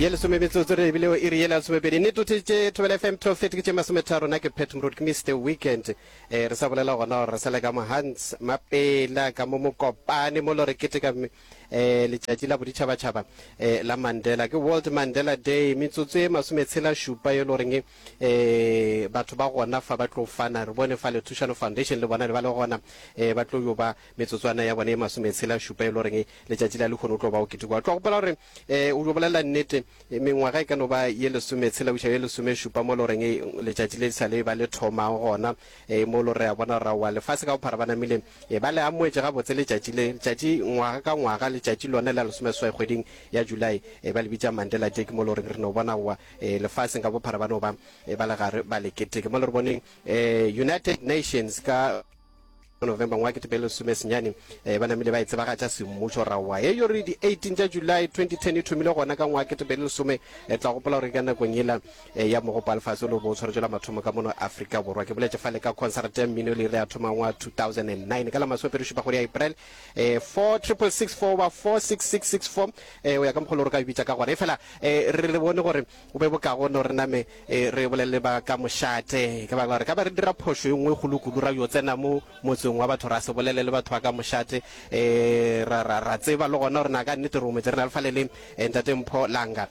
ye lesome metsotso re ebile o iri ye le lesomepedi ne tote tše thobela fm trofet ke tše masometharo na ke pet mrod ke mr weekend eh re sa bolela gona gore re sa le ka mohans mapela ka mo mokopane mo lo re keteka um letšatši la boditšhabatšhaba eh la mandela ke world mandela day metsotso e masometshela šupa yo lo reng eh batho ba gona fa ba tlo fana re bone fa lethušano foundation le bona le ba le gona eh ba tlo yo ba Metsotswana ya bone e masometshela šupa e lo reng letšatši la lehono o tlo ba o ketekoa. Tlo gopola gore um o jo bolela nnete, mengwaga e ka no ba ye lesometshela go iša ye lesomešupa mo lo reng letšatši le sa le ba le thoma gona, um mo lo re a bona gore aowa lefase ka bophara ba namile um ba le amoetše gabotse letšatši le. Letšatši ngwaga ka ngwaga, letšatši lone la lesomeseswai kgweding ya July um ba le bitša Mandela Day, ke mo lo reng re no bona aowa um lefaseng ka bophara ba no ba um ba le gare ba le keteke. Mo le re boneng um United Nations ka. November ngwa ke tebele sume senyane eh, ba namile ba e tsebagatša semmušo rawa ye yore di 18 tša July 2010 e thomile gona ka ngwa ke tebele lesome e eh, tla gopola gore ka nakong yela eh, ya mogopo alefase o le bo o tshwaretšwela mathomo ka mono Afrika Borwa ke boletše fale ka concert ya mmino le re a thoma ngwa 2009 ka la maswepere šupa kgwedi ya April eh, 4664 ba 46664 eh, o ya ka mokgolo gore ka bitša ka gona e fela eh, re le bone gore Go be bokaone gore re name re bolelele ba ka mošate, ka baka la gore ka ba re dira phošo e nngwe e kgolo kudu, ra yo tsena mo motseng wa batho, ra se bolele le batho ba ka mošate, ra, ra, ra tseba le gona gore na ka nnete re ometše. Re na le fale le Ntate Mpho Langa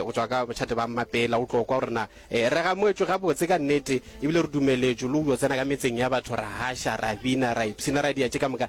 go tšwa ka mošate ba Mmapela, o tlo kwa gore na re gamoetšwe gabotse ka nnete, ebile re dumeletšwe le go yo tsena ka metseng ya batho, ra haša, ra bina, ra ipshina, ra diatše ka moka.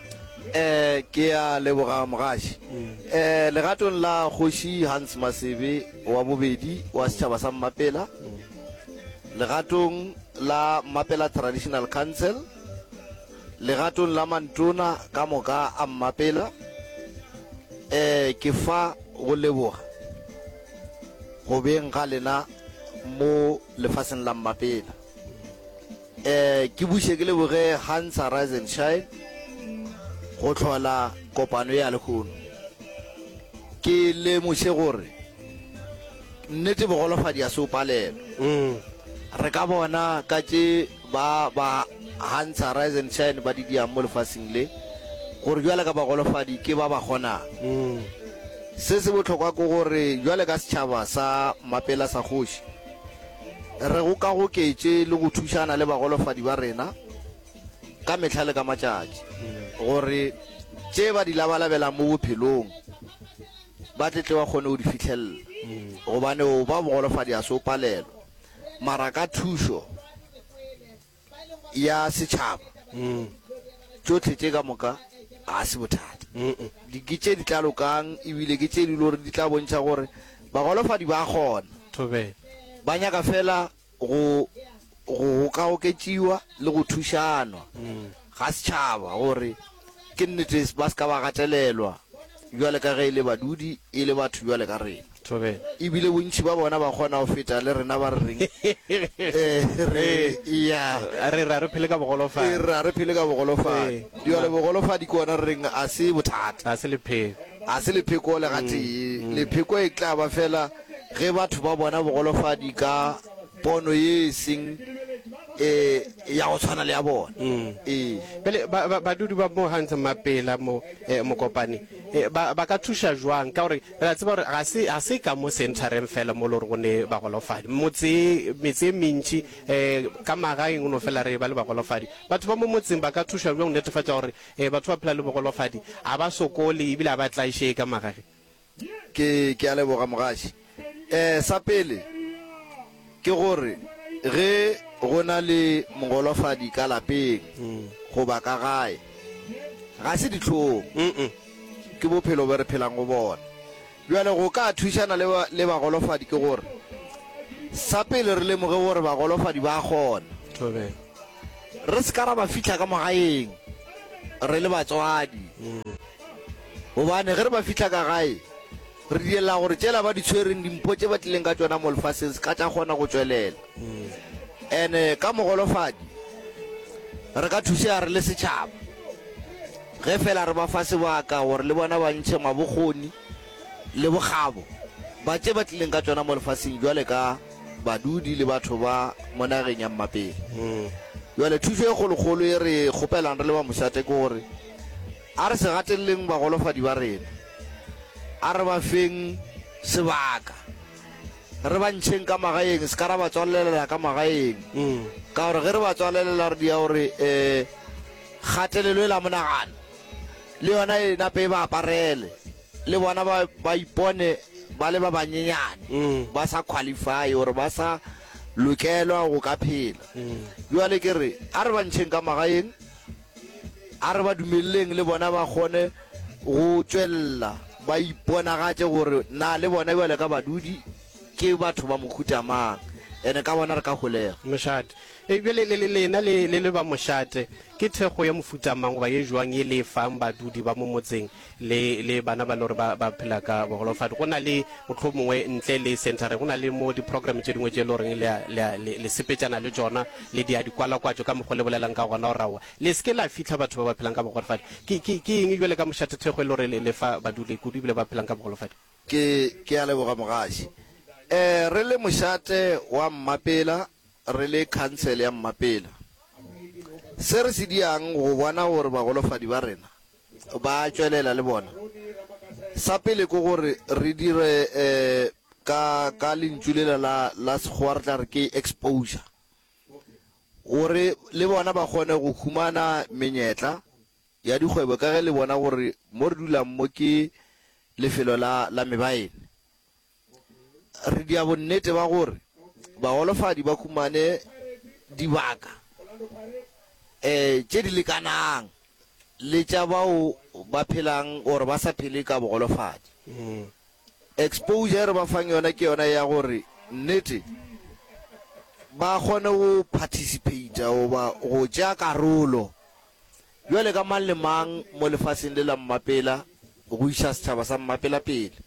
Eh, ke a leboga mogaši. Eh, legatong la kgoši Hans Masebe wa bobedi wa setšhaba sa Mmapela, legatong la Mmapela Traditional Council, legatong la mantona ka moka a Mmapela, eh, ke fa go leboga go beng ga lena mo lefaseng la Mmapela. eh ke buše ke leboge hansa rise and shine go tlhola kopano ya lekhono ke lemoše gore nnete bogolofadi ya se o palelo mm. re ka bona ka tše ba ba hansa rise and shine ba didiang mo lefaseng le gore jwale ka bagolofadi ke ba ba kgonang mm. se se bohlokwa ke gore jwale ka setšhaba sa mapela sa kgoši Re go ka goketše le go thušana le bagolofadi ba rena ka mehla le ka matšatši gore tše ba di labalabelang mo bophelong ba tle tle ba kgone go di fihlelela, gobane go ba bogolofadi ga se go palelwa, mara ka thušo. ya setšhaba, tšohle tše ka moka ga se bothata. Di ke tše di tla lokang e bile ke tše di lego gore di tla bontšha gore bagolofadi ba a kgona, ba nyaka feela go gokagoketšiwa le go thušanwa. ga setšhaba gore ke nnete ba se ka ba gatelelwa bjale ka ge e le badudi e le batho bjale ka rena. Thobela. E bile bontši ba bona ba kgona go feta le rena ba re reng re eya. A re re a re phele ka bogolofadi. E re a re phele ka bogolofadi. Bjale bogolofadi ke gona re reng ga se bothata. Ga se lepheko. Ga se lepheko le gatee. Lepheko e tla ba fela ge batho ba bona bogolofadi ka pono ye e seng e ya go tshwana le ya bona mm. ee bjale badudi ba mo gantse mapela mo eh, mokopane eh, ba ka thuša jwang ka gore re a tseba gore ga se ka mo centereng fela mo le gore go ne bagolofadi motse metse e mentši um ka magaeng o no fela re ba le bagolofadi batho ba mo motseng ba ka thuša jwang go netefatša gore batho ba phela le bogolofadi ga ba sokole ebile ga ba tlaišee ka magage Ke, ke a leboga, mogaši. Ee, sa pele, ke gore ge go na le mogolofadi ka lapeng goba ka gae, ga se dihlong, ke bophelo bjo re phelang go bona. Bjale go ka thušana le, le bagolofadi ke gore sa pele re lemoge gore bagolofadi ba a kgona. Thobela. Re se ka ra ba fihla ka mo gaeng re le batswadi. Gobane ge re ba fihla ka gae, re direla gore tšela ba di tshwereng dimpho tše ba tlileng ka tšona mo lefaseng se ka tša kgona go tšwelela. And ka mogolofadi re ka thusega re le setšhaba ge feela re ba fa sebaka gore le bona ba ntšhe mabokgoni le bokgabo ba tše ba tlileng ka tšona mo lefaseng bjale ka badudi le batho ba mo nageng ya mmapele. Bjale thušo e kgolokgolo ye re e kgopelang re le ba Mošate ke gore, A re se gateleleng bagolofadi ba rena. A re ba feng sebaka. Re ba ntšheng ka magaeng, se ka ra ba tswalelela ka magaeng. Ka gore ge re ba tswalelela re dia gore kgatelelo e la monagano le yona e nape e ba aparele, le bona ba ba ipone ba le ba banyenyane, ba sa qualify or ba sa lokelwa go ka phela. Bjale ke re a re ba ntšheng ka magaeng. A re ba dumeleleng le bona ba kgone go tšwelela ba iponagatše gore na le bona bjalo ka badudi ke batho ba mohuta mang, and ka bona re ka holega. Mošate. E bjale le, le, lena le, le le ba mošate, ke thekgo ya mohuta mang goba ye jwang ye le e fang badudi ba mo motseng le, le bana ba e le gore ba, ba phela ka bogolofadi. Go na le, mohlomongwe ntle le centre, go na le mo di-program tše dingwe tše e le goreng le, le, le, le sepetšana le tšona, le di a di kwalakwatšo ka mokgwa le bolelang ka gona, gore aowa, le se ke la fihla batho ba ba phelang ka bogolofadi. Ke, ke, ke eng bjale ka mošathethekgo e le gore le, le fa badule kudu ebile ba phelang ka bogolofadi? Ke, ke a leboga, mogaši. Ee, re le mošate wa Mmapela, re le khansele ya Mmapela, se re se diang go bona gore bagolofadi ba rena Ba a tšwelela le bona. Sa pele ke gore re dire ka, ka lentšu lela la, la Sekgowa re tla re ke exposure, gore le bona ba kgone go humana menyetla ya dikgwebo ka ge le bona gore mo re dulang mo ke lefelo la, la mebaene. Re dia bonnete ba gore bagolofadi ba humane dibaka um tše di lekanang le tša bao ba phelang or ba sa phele ka bogolofadi. Mm. Exposure e re ba fang yona ke yona ya gore nnete ba kgone go participata goba go tšea karolo jwale ka mang le mang mo lefaseng le la mmapela go iša setšhaba sa mmapela pele.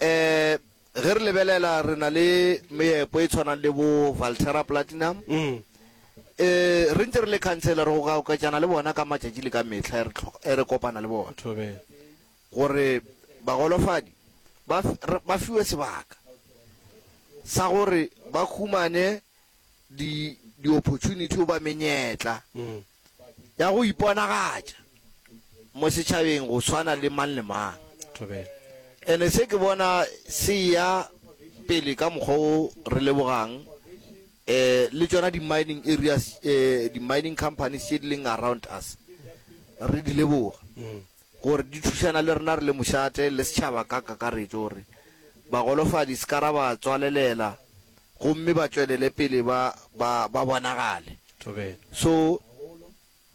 Ee, ge re lebelela re na le meepo e tshwanang le bo Valterra Platinum. Ee, re ntse re le khansele re go goketšana le bona ka matšatši le ka mehla e re tlhoka, e re kopana le bona gore bagolofadi ba, ba fiwe sebaka sa gore ba humane di, di-opportunity goba menyetla ya go iponagatša mo setšhabeng go swana le mang le mang. Thobela. Ene se ke bona se eya pele ka mokgwa wo re lebogang eh le tšona di mining areas eh di mining companies tše di leng around us re di leboga. Gore di thušana le rena re le mošate le setšhaba ka kakaretšo gore bagolofadi se ka ra ba tswalelela gomme ba tšwelele pele ba, ba, ba bonagale. So,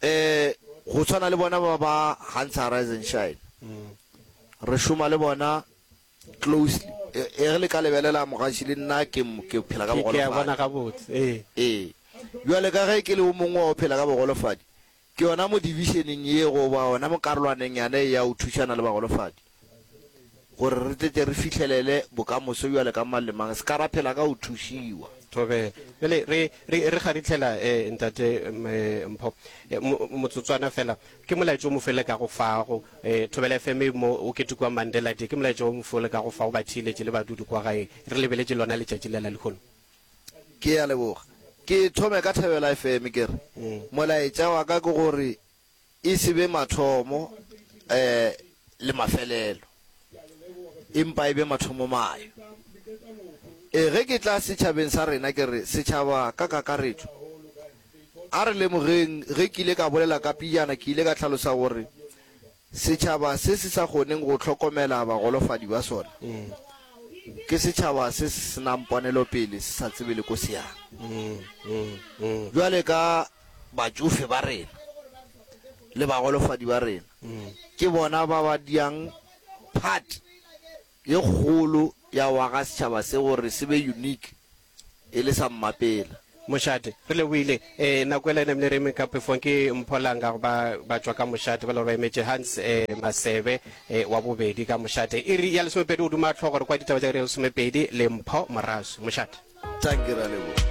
um, go swana le bona ba ba Hans Arise and Shine, re šoma le bona closely. Ee, ge le ka lebelela mogaši, le nna ke, ke phela ka bogolofadi. Ee. Bjale ka ge ke le o mongwe wa o phela ka bogolofadi, Ke yona mo dibišeneng ye goba gona mo karolwaneng yane ye ya go thušana le bagolofadi, gore re tle tle re fihlelele bokamoso bjale ka mang le mang se ka ra phela ka go thušiwa. Thobe, Bjale re, re, re kgaritlhela, eh, Ntate, um, eh, Mpho, eh, mo, motsotswana feela. Ke molaetša o mofe le ka go fa go, eh, Thobela FM mo o ketekwang Mandela Day? Ke molaetša o mofe o le ka go fa go ba theeletše le badudu kwa gae? Re lebeletse lona letšatši lela lehono. Ke a leboga. Ke thome ka Thebela FM ke re, molaetša wa ka ke gore e se be mathomo le mafelelo, empa e be mathomomayo. Ee, ge ke tla setšhabeng sa rena ke re, setšhaba ka kakaretšo, a re lemogeng ge ke ile ka bolela ka pejana ke ile ka hlalosa gore Setšhaba se se sa kgoning go hlokomela bagolofadi ba sona ke setšhaba se se se nang ponelopele, se sa tsebe le ko se yang. Bjale ka batšofe ba rena le bagolofadi ba rena, ke bona ba ba diang part ye kgolo ya go aga setšhaba se gore se be unique e le sa mmapela. Mošate, re lebohile. Eh, nako ela e namile re eme ka pefong ke Mpholanga go ba ba tšwa ka mošate ba le gore ba emetše Hans eh, Masebe eh, wa bobedi ka mošate. Iri ya lesomepedi o duma tlhogo re kwa ditaba tša iri ya lesomepedi le Mpho Morasu. Mošate. Tanki, re a leboga.